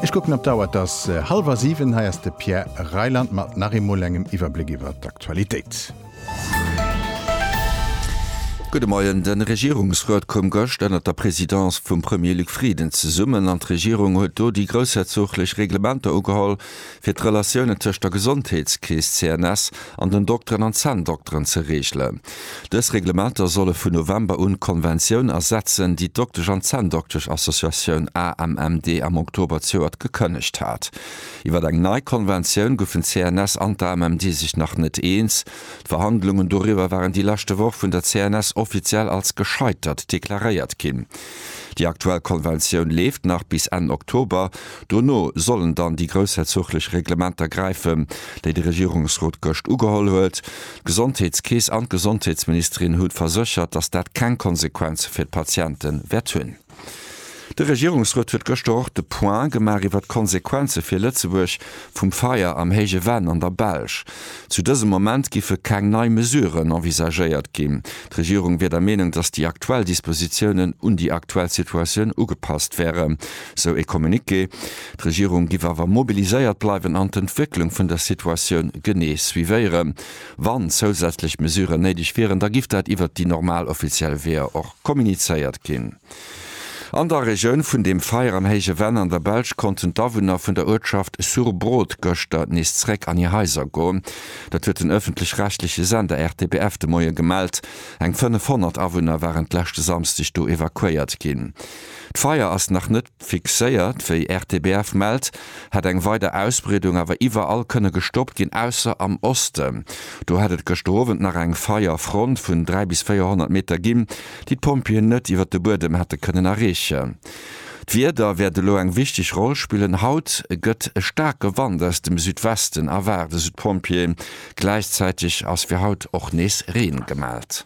Ech kucken op d'Auer, et ass hallwer siwen. Hei ass de Pierre Reyland mat nach eemol engem Iwwerbléck iwwer d'Aktualitéit. Gudde Moien. De Regierungsrot koum gëscht ënner der Presidence vum Premier Luc Frieden zesummen an d'Regierung huet do déi groussherzoglech Reglementer ugeholl, fir d'Relatiounen tëscht der Gesondheetskeess CNS an den Dokteren an Zänndokteren ze reegelen. Dës Reglementer solle vun November un d'Konventioun ersetzen, déi d'Doktesch an Zänndoktesch Associatioun AMMD am Oktober zëuert gekënnegt hat. Iwwer eng nei Konventioun goufen d'CNS an d'AMMD sech nach net eens. D'Verhandlungen doriwwer waren déi leschte Woch vun der CNS offiziell als gescheitert deklaréiert ginn. Déi aktuell Konventioun leeft nach bis Enn Oktober. Dono sollen dann déi groussherzoglech Reglementer gräifen, déi de Regierungsrot gëscht ugeholl huet. D'Gesondheetskeess an d'Gesondheetsministerin hu verséchert, datt dat keng Konsequenze fir d'Patiente wäert hunn. De Regierungsrot huet gëschter och de Point gemaach iwwert d'Konsequenze fir Lëtzebuerg, vum Feier am Héije Venn an der Belsch. Zu dësem Moment giffe keng nei Mesuren envisagéiert ginn. D'Regierung wier der Meenung, datt déi aktuell Dispositiounen un déi aktuell Situatioun ugepasst wären, esou ee Communiqué. D'Regierung giff awer mobiliséiert bleiwen an d'Entwécklung vun der Situatioun genee suivéieren. Wann zousätzlech Mesuren néideg wieren, da giff dat iwwert déi normal offiziell Weeër och kommunizéiert ginn. An der Regioun vun dem Feier am Héije Venn an der Belsch konnten d'Awunner vun der Uertschaft Surbrot gëschter nees zeréck an hir Haiser goen. Dat huet den ëffentlech-rechtleche Sender RTBF de Moie gemellt. Eng 500 Awunner waren d'leschte Samsdeg do evakuéiert ginn. D'Feier ass nach net. Fixéiert, wéi RTBF mellt, hätt eng weider Ausbreedung awer iwwerall kënne gestoppt ginn, ausser am Osten. Do hätt et gëschter Owend nach eng Feierfront vun 300 bis 400 Meter ginn, déi d'Pompjeeën net iwwer de Buedem hätte kënnen erreechen. D'Wieder wäert elo eng wichteg Roll spillen. Haut gëtt e staarke Wand aus dem Südwesten erwaart, esou d'Pompjeeën. Gläichzäiteg ass fir haut och nees Reen gemellt.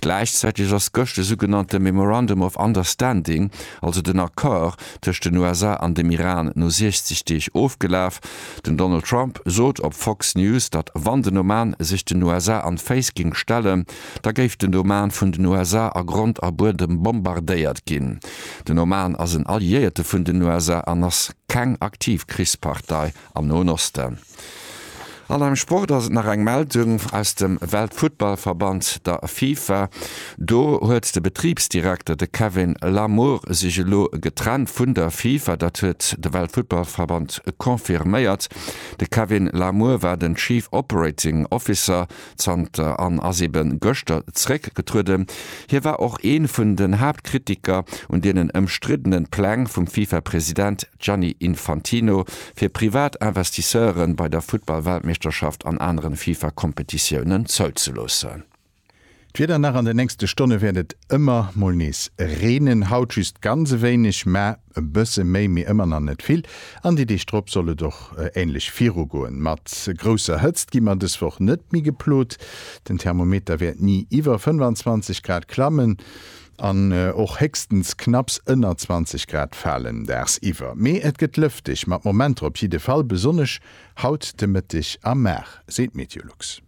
Gläichzäiteg ass gëscht de sougenannte Memorandum of Understanding, also den Accord tëscht den USA an dem Iran no 60 Deeg ofgelaf. Den Donald Trump sot op Fox News, datt wann den Oman sech den USA an d'Féiss géing stellen, da géif den Oman vun den USA a Grond a Buedem bombardéiert ginn. Den Oman ass en Alliéierte vun den USA an ass keng aktiv Krichspartei. Am Noen Osten an am Sport ass et nach eng Meldung aus dem Weltfuttballverband, der FIFA. Do huet de Betribsdirekter, de Kevin Lamour, sech elo getrennt vun der FIFA. Dat huet de Weltfuttballverband confirméiert. De Kevin Lamour war den Chief Operating Officer zanter an ass ebe gëschter zréckgetrueden. Hie war och ee vun den Haaptkritiker un deenen ëmstriddenen Pläng vum FIFA-President Gianni Infantino fir privat Investisseure bei der Futtball-Weltmeeschterschaft an aneren FIFA-Kompetitiounen zouzeloossen. D'Wieder nach, An de nächste Stonne wäert et ëmmer mol nees reenen, haut just ganz e wéineg, mä e bësse méi, mee ëmmer nach net vill, an déi Deeg drop soll et och änlech virugoen. Mat grousser Hëtzt gi mer dës Woch net méi geplot, den Thermometer wäert ni iwwer 25 Grad klammen an och héchstens knapps ënner 20 Grad falen dagsiwwer. Mee et gëtt lëfteg mat Momenter op jidde Fall, besonnesch haut de Mëtteg a Mar, seet Meteolux.